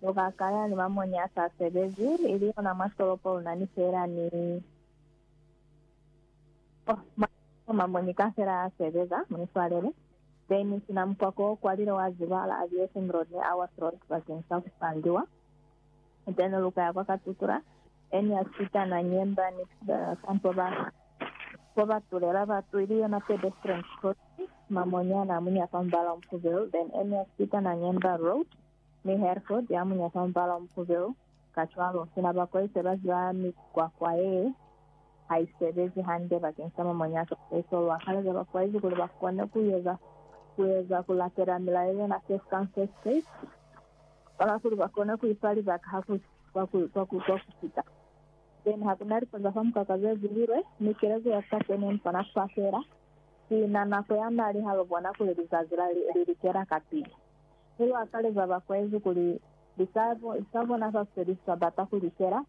Lu ka kaya ni mamonye a sa sebezi, ili yona mwa tolopo lu na ni feela ni Oh, mwa tolopo mamonye kaufela a sebeza, mu ni swalele. Dennis na mukwako o kwalile wa ziba la Aviation Road ni Awas Road bakeng sa ku pandiwa. Then lu ka ya kwa Katutura, any ya Chita na Nyemba ni ka mpo ba, mpo ba tulela batu, ili yona pedestrians crossing, mamonye a na muña fa mubala o mufubelu, then any ya Chita na Nyemba Road. Mi Hereford ya muñata mubala o mufubelu, kacwalo, sina ba Koise ba ziba mikwakwa ye haisebezi hande bakeng sa mamuñata a Jesu, lu akaleza ba Koise kuli ba kone ku eza, ku eza, ku latela milayo yena case ka case case, kona kuli ba kone ku ifa libaka ha ku, kwa ku, kwa ku, kwa ku fita. Then ha kuna lipo za fa mukaka ze zililwe, mi kelezo ya ka kene ni kona ku fafela, sina nako ya mali ha lu bona kuli lizazi la li, li likela kapili. ne lu akaleza bakwezi kuli lisapo za bona za seliswa bata ku likela,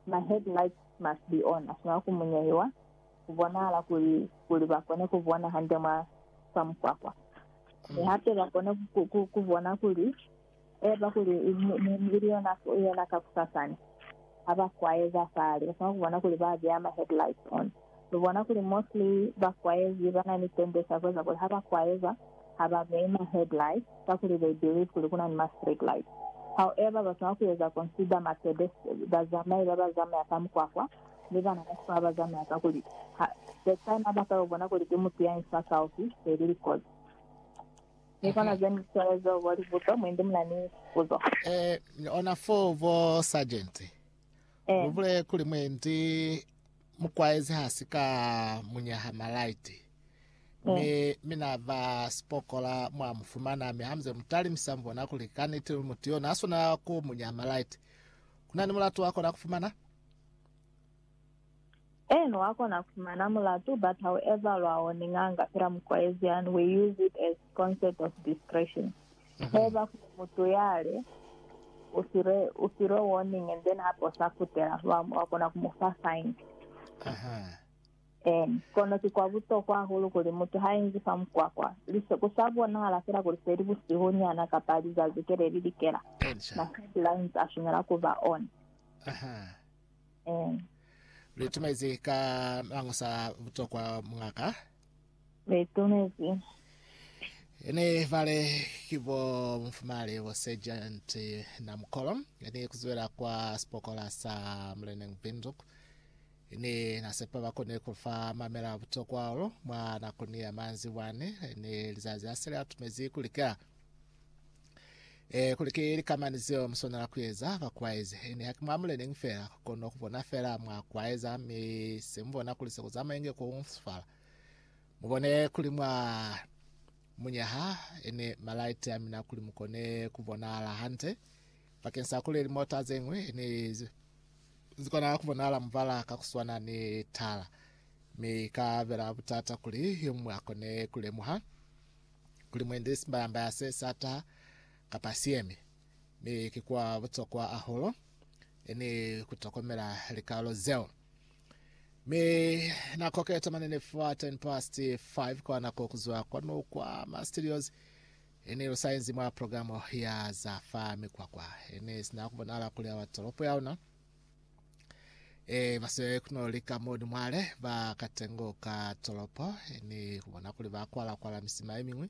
ma headlights must be on, a swanela ku munyehiwa ku bonahala kuli kuli ba kone ku bona hande mwa za mukwakwa, mi hape ba kone ku bona kuli eba kuli ili yona yena kakusasani ha ba kwaeza fale ba swanela ku bona kuli ba beya ma headlights on. Lu bona kuli mostly ba kwaezi ba na ni tendency ya ku eza kuli ha ba kwaeza, ha ba beyi ma headlights kakuli they believe kuli ku na ni ma street lights. However, ba swanela ku eza consider ma pedestrians, bazamai ba ba zamaya ka mukwakwa, ni bana ba sikolo ba ba zamaya kakuli ha the time ha ba ka yo bona kuli ki mutu ya infa kaufi, they really cause. Ki kona ze ni swele zeo bo libuto, mwendi mu na ni puzo. Eh, ni ona foo bo Sergeant. Eh. Lu bule kuli mwendi. Mukwaezi ha si ka mu nyaha malaiti, mi, mi na ba sipokola, mwa mu fumana. Mi hamuze mu talimisa, mu bona kuli kaniti luli mutu yo na swanela ku mu nyaha malaiti. Ku na ni mulatu wa kona ku fumana? Eno wa kona ku fumana mulatu, but ha u eza lwawo ni nganga fela, mukwaezi, and we use it as Concept of discretion. Haiba kuli mutu yale u file, u filwe warning and then hape u sa kutela, wa, wa kona ku mu fa fine. Aha. Em, kono ki kwa butokwa hahulu kuli mutu ha inzi fa mukwakwa, lise ku sa bonahala fela kuli se li busihu nyana kapa lizazi ke le li likela, Elisha. ma sight lines a swanela ku ba on. Aha. Em. Lu itumaize ka mañosa a butokwa, Muñ'a ka. Be itumezi. Ene bale ki bo mufumali bo Sergeant Namukolo ene kuzwela kwa sipokola sa Muleneng Binduku ene nasepa bakone kufa mamela butokwa olo mwa nakoni ya manzi bwane ene lizazi asele atumezi kuli ka e kuli ki likamani zeo muswanela kuyeza bakwaezi ene haki mwa Muleneng fela kono kubona fela mwa kwaeza mi semubona kuli sekuzamaenge ku sifala Mubone kuli mwa munyaha ene malaiti amina kuli mukone kubonahala hande bakeng sa kuli limota zeñwi ne zikona kubonahala mubala ka kuswana ni tala, mi ka bela butata kuli yomuñwi akone kulemuha kuli mwendi simbayambaya se sataha kapa siemi. Mi ki kwa butokwa ahulu ene kutokomela likalo zeo. Mi na koketa mane ni fa 10 past 5 kwa nako kuzwa kwanu kwa ma studios ini lusainzi mwa programo ya za fa mikwakwa ini sina kubonala kuli awa tolopo ya una e baswele kuno lika modi mwale ba katengo ka tolopo ini kubona kuli ba kwala kwala misima ye mingwi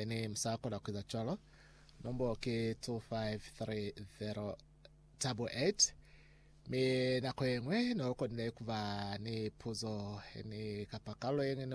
Ene musa kona ku eza cwalo. Nombolo ki 253088. Mi nako yeñwi ne lu konile ku ba ni puzo yeñwi kapa kalulo yeñwi ne